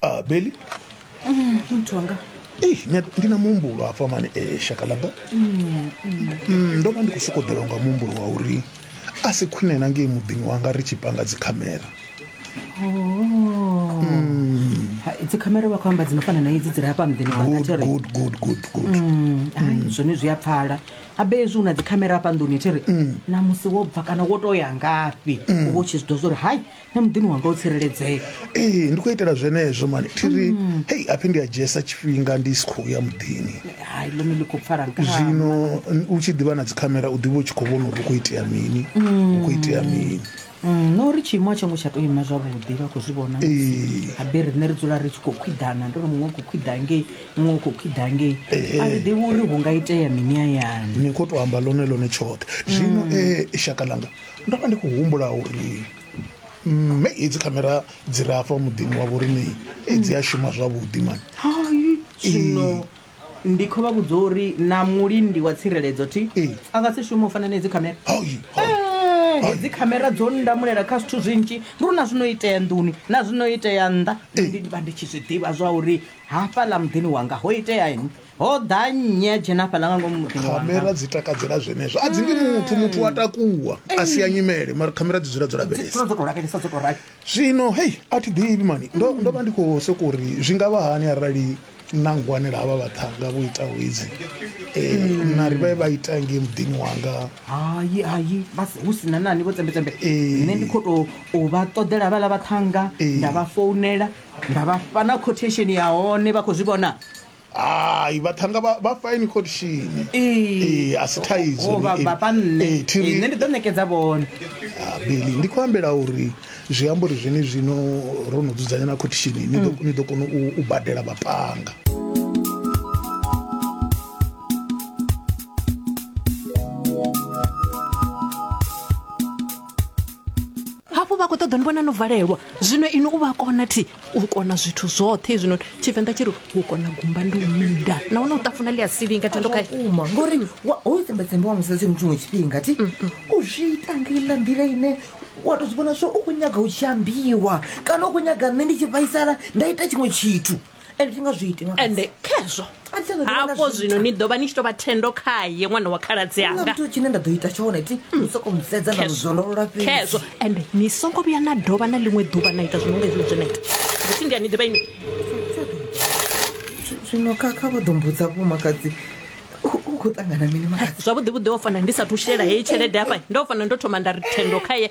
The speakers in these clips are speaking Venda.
ah, beli mm, mtu wanga Ei, nya- ndina muhumbulo hafha mani eh, shakalaba Mm, ndo vha ndi khou sokou ḓelwa nga muhumbulo wa uri a si khwine na ngei muḓini wanga ri tshi panga dzikhamera Oh. Ha, idzi khamera vha khou amba dzi no fana na idzi dzi re hafha muḓini wanga Good, Thero. good, good, good, good. Mm, ai, zwone zwi a pfala abe hezwi u na dzikhamera hafha nḓuni thiri na musi wo bva kana wo to ya ngafhi u vha u tshi zwi ḓo zwa uri hai na muḓini wanga u tsireledzee ee ndi khou itela zwenezwo mani thiri mm. hei aphi ndi a dzhiesa tshifhinga ndi si khou ya muḓini hai ḽone ḽi khou pfala nga zwino u tshi ḓivha na dzikhamera u ḓivha u tshi khou vhona uri u khou itea mini u khou itea mm. mini mm, no uri tshiimo a tsho ngo tsha tou ima zwavhuḓi vha khou zwi vhona habe riṋe ri dzula ri tshi khou khwiḓana ndi uri muṅwe u khou khwiḓa ngei muṅwe u khou khwiḓa ngei a ri ḓivhi uri hu nga itea mini ayani ni khou tou amba ḽone ḽone tshoṱhe zwino e shaka ḽanga ndo vha ndi khou humbula uri mme hedzi khamera dzi re afha muḓini wa vhoriṋe dzi a shuma zwavhuḓi mani hai zwino ndi khou vha vhudza uri na mulindi wa tsireledzo thi Ee. a nga si shume u fana na hedzi khamera Hai, hai. Eh, hedzi khamera dzo ndamulela kha zwithu zwinzhi ndi uri na zwino itea nḓuni na zwino itea nnḓa ndi ndi vha ndi tshi zwi ḓivha zwa uri hafhaḽa muḓini wanga ho itea ini ho ḓa nnyi a dzhena hafhaḽa nga ngomu muḓini wanga khamera dzi takadzela zwenezwo a dzi ndi muthu muthu wa takuwa a si ya nyimele mara khamera dzi dzula dzo dzula lavhelesa dzo tou lavhelesa dzo tou rali zwino hei a thi ḓivhi mani ndo ndo vha ndi khou soko uri zwi nga vha hani arali na ngwanela havha vhaṱhanga vho itaho hedzi um na ri vha vha ita ngei muḓini wanga hayi hayi vha si- hu sina nani vho tsembetsembe Ee. nṋe ndi khou tou u vha ṱoḓela havhaḽa vhaṱhanga Ee. nda vha founela nda vha fha na quotation ya hone vha khou zwi vhona Hai vhaṱhannga vha vha fine khotshini. Ee a si thaidzo. Ho vha vhafha nṋe. Ee thi ri. Nṋe ndi ḓo ṋekedza vhone. Ah, Billy ndi khou ambela uri zwi amba uri zwene zwino ro no dzudzanya na khotshini ni ḓo ni ḓo kona u u badela vhaṱhannga. Hafhu vha khou ṱoḓa ni vhona no valelwa zwino inwi u vha kona thi. u kona zwithu zwoṱhe hezwinoni tshivenḓa tshi ri u kona gumba ndi u minda nahone u ṱafuna ḽi a silinga thendo kha uma ngori wa- hoyu tsembetsembe wa musadzi mutshiṅwe tshifhinga ti u zwi ita ngeiḽa nḓila ine wa to zwi vhona zwo u khou nyaga u tshi ambiwa kana u khou nyaga nṋe ndi tshi vhaisala nda ita tshiṅwe tshithu and thi nga zwi iti nga ende khezwo hafho zwino ni ḓo vha ni tshi tou vha thendo khaye ṅwana wa khaladzi Huna anga muthu tshine nda ḓo ita tshone ti ni soko musedza nda muzwololola fhedzi khezwo ende ni songo vhuya na dovha na ḽiṅwe ḓuvha na ita zwino nga hezwi zwe na ita zwi ndi a ni ḓivha ini zwino kha kha vho ḓo mbudza vhomakadzi u- u khou ṱangana mini makadzi zwavhuḓi vhuḓi o fana ndi sathu shela heyi tshelede hafha ndo fana ndo thoma nda ri thendo khaye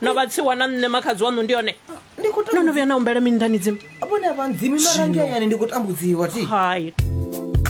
no vha tsiwa na nṋe makhadzi waṋu ndi yone ndi khou no no vhuya na humbela mini nḓani dzimu vhone a vha ndzimi mara nge hayani ndi khou tambudziwa thi hai